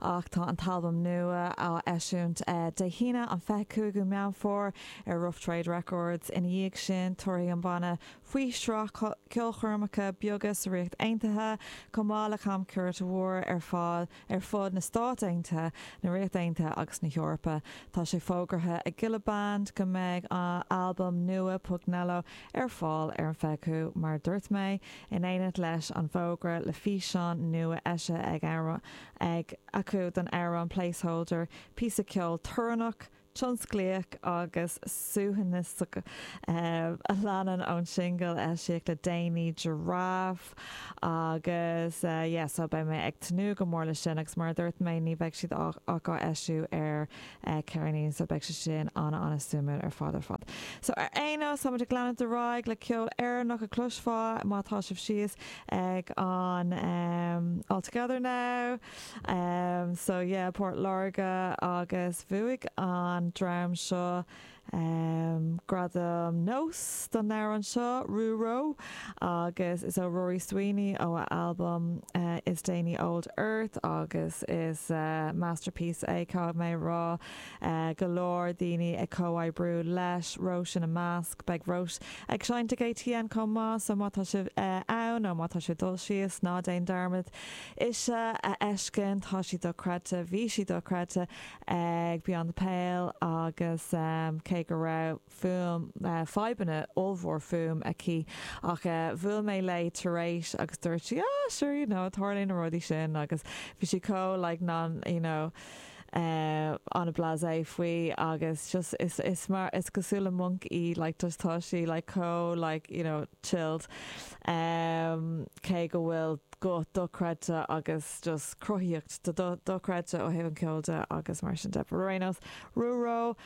Ach tá an t-albam nua á eisiúint Dé hAoine, an 25ú Meán Fómhair, ar Rough Trade Records. Ina dhiaidh sin, tabharfaidh an banna faoi shraith ceolchoirmeacha beaga sa Ríocht Aontaithe, chomh maith le camchuairt mhór ar fad ar fud na Stáit Aontaithe, na Ríocht Aontaithe agus na hEorpa. Tá sé fógartha ag Gilla Band go mbeidh a n-albam nua, Pugnello, ar fáil ar an 25ú, mar a dúirt mé, in éineacht leis an bhfógra le físeán nua eisithe ag an. ag acu don amhrán Placeholder, píosa ceoil torannach, tionsclaíoch agus suaithinseach a leanann ón singil a eisíodh le déanaí, Giraffe, agus yeah, so beidh mé ag tnúth go mór le sin agus mar a dúirt mé, ní bheidh siad ach á eisiúint ar ceirnín, so beidh sé sin ana ana suimiúil ar fad ar fad. So ar aon nós, táimid ag leanúint ar aghaidh le ceol Éireannach a chloisfeá má tá sibh síos ag an em All Together Now so yeah Port Láirge agus bhuaigh an dream seo Gradam nós don amhrán seo, Rú-ró, agus is ó Rory Sweeney ó a albam is déanaí Old Earth agus is masterpiece é caithfidh mé a rá. go leor daoine ag comhoibriú leis, Róis ina measc. Beidh Róis ag seinnt ag ATN chomh maith, so má tá sibh ann nó má tá sibh ag dul síos, ná déan dearmad ise a fheiscint, tá sí dochreidte, bhí sí dochreidte ag Beyond the Pale agus cé go raibh. fuaim, fadhbanna ollmhór fuaim aici ach bhuail mé léi tar éis agus dúirt sí ah sure you know tarlaíonn na rudaí sin agus bhí sí chomh like non you know an-blasé faoi agus just is is mar is cosúil le monk í like just tá sí like chomh like you know chilled um cé go bhfuil guth dochreidte agus just cruthaíocht do dochreidte ó thaobh an ceol de agus mar sin de but ar aon nós rú ró